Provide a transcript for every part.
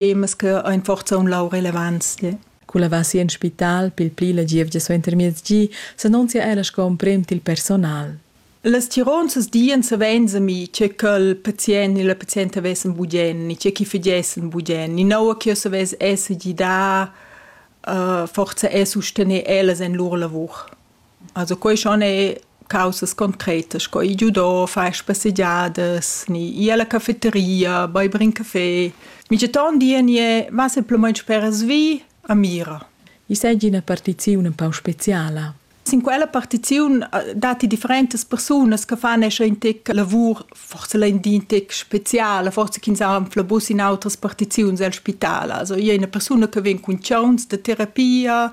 temas che ein forza un lau relevants. Yeah. Culla va si en spital pil pli la gievgia suentermiez gi, s'annunzia ella sco emprem til personal. Las tironzas dien savein mi, che quel patient ni la pazienta vessen bugen, ni che chi figessen bugen, ni naua che savess esser gida, uh, forza e sustener ellas en lur lavur. Also quai schon è caussas concretas sco i giudò, far spassegiadas, ni ir alla caffetteria, beiber in café. Mintgaton di nie va semplamain speras vi a mira. I seigi ina partiziun empau speciala. Sin quella partiziun datti differentas persunas che fan escha in tec lavur, forse lein di in tec speziala, forse ch'ins ha anfla bus in outras partiziuns el spital. Also, i è una persuna che vegn cun chauns da terapia,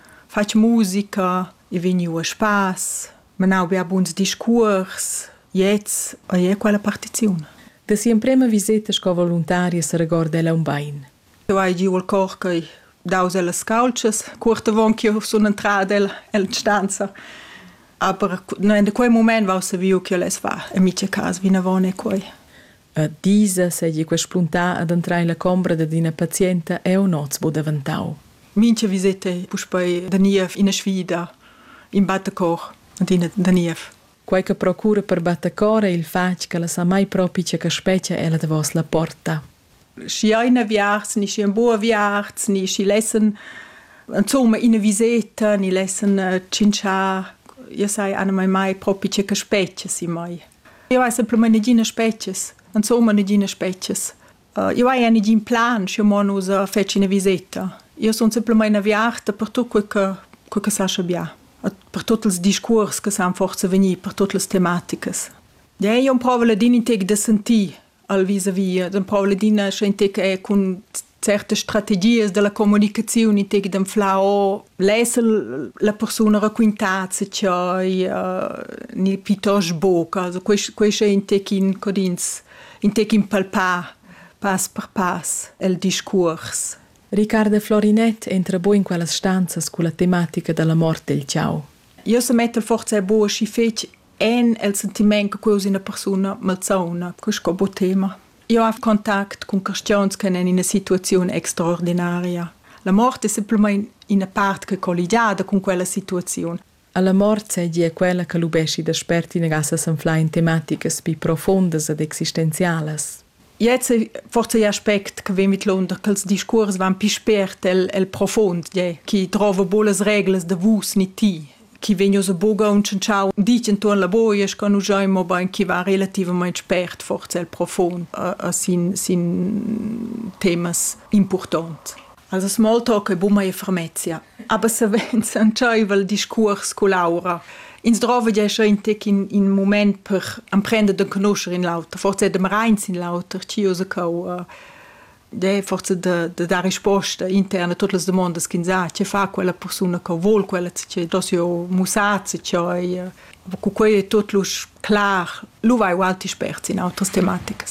fatg musica, i vegniu a spass, menau bia buns discuors, gliez ei era quella partiziun. Da si'emprema viseta sco voluntaria seregorda ella aunc bein. Eu hai giu il cor ch'ei daus ellas caultschas, cuort avon ch'jeu sun entrada el, el stanza. Aber no en quei mument vau saviu ch'el es va en mia casa vinavon e quei. A Tisa seigi quei spuntà ad entrar ella combra dad ina pazienta eu noz bu daventau. Mincha viseta puspei da niev ina sfida, in battecor ad ina da niev. Quei che procura per battecor ei il fatg ch'ella sa mai propi tge che spetga ella davos la porta. Schi ein aviarts ni schi ein bu aviarts ni schi lessen insomma ina viseta ni lessen tschintschar, io sai anamai mai propi tge che spetga si mai. Eu hai simplamaing neginas spezchas, insomma neginas spezchas. Eu haja negin plan schi mo nus fetschin üna viseta. Io sun simplamaing aviarta per tut que che que che sascha bia, per tuot ils discuors che san forsa vegnir per tuot las tematicas. Ja, io improvo ladin ün tec da sentir al vis-a-vis d'empau ladina scientifica e cun certe strategias della comunicazione in tec dem flau lesa la persona racquintat se chai uh, ni pitos boca also quest quest è in tec in codins in tec in palpar pass per pass el discours Riccardo Florinet entra bo in quellas stanzas cu la tematica della morte del ciao. Io se metto forza e bo și fec en el sentiment che quei es ina persuna malsauna, che sco bo tema. Io have contact con questiuns che en ina situazione extraordinaria. La morte è semplicemente una parte che è colligiata con quella situazione. Alla morte seigi è quella che lubesci da spert in gassa sanfla in tematiche pi profondas ed existenzialas. Jetzt forse gli aspect che vegn vidlunder che els discuors van pi spert el, el profond, gie, chi drova buca las reglas da vus ni ti, chi vegn ussa buca aunchentschau ditg entuorn la boia, sco nus giain mobein chi va relativamaing spert forse el profond a, a sin, sin temas impurtont. Also smalltalk e buma e fermezia. Aber savens entscheiva il discuors cu Laura. Ins drova ja schon tec in, in moment per emprender de conoscere in l'auter, forse de reins in l'auter, ci usa cau uh, de forse de, de dar risposta interna a tutte le domande che ins ha, che fa quella persona che vuol quella, che dos io musazzi, che cu quei è tutto clar, lu vai u altri esperti in altre tematiche.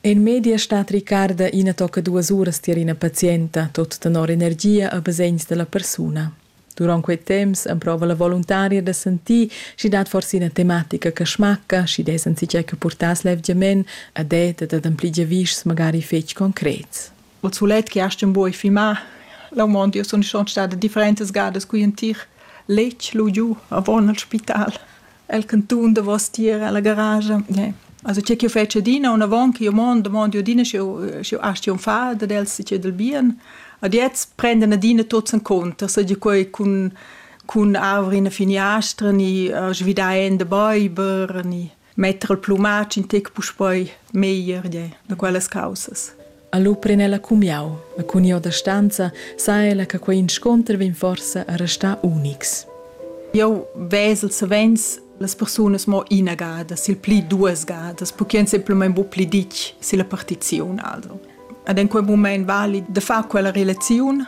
En media stat Ricarda ina tocca duas uras tier ina pazienta, tot tenor energia e basegns dalla persuna. Duront quei temps emprova la voluntaria da sentir sch'i dat forse ina tematica che smacca, sch'i dess enzatgei che purtass levgiament ed ed ad ampli giavischs magari fetg concrets. il sulet che hast in boi fimà. La mond io sun schon stada differentas gadas qui in tir letg lu giu avon al spital. El cantun davos tier alla garage. Yeah. Also c'è che fece dina una von che io mond mond io dina sio sio asti un fa da dels si del bien. Ad jetzt prenden dina tots in conto, so di quei cun cun avri una finiastra ni uh, svidai in de beiber ni Metter il plumatsch in tec puspei meglier de da quellas caussas. Allo pren ella cumiau, ma cun io da stanza sa ella che quei insconter vegn forsa a restar unics. Io vesel savens las persunas mo ina gada, sil pli duas gadas, perché ein semplamein bu pli ditg silla partiziun. Also. Ad in quei moment vali de far quella relaziun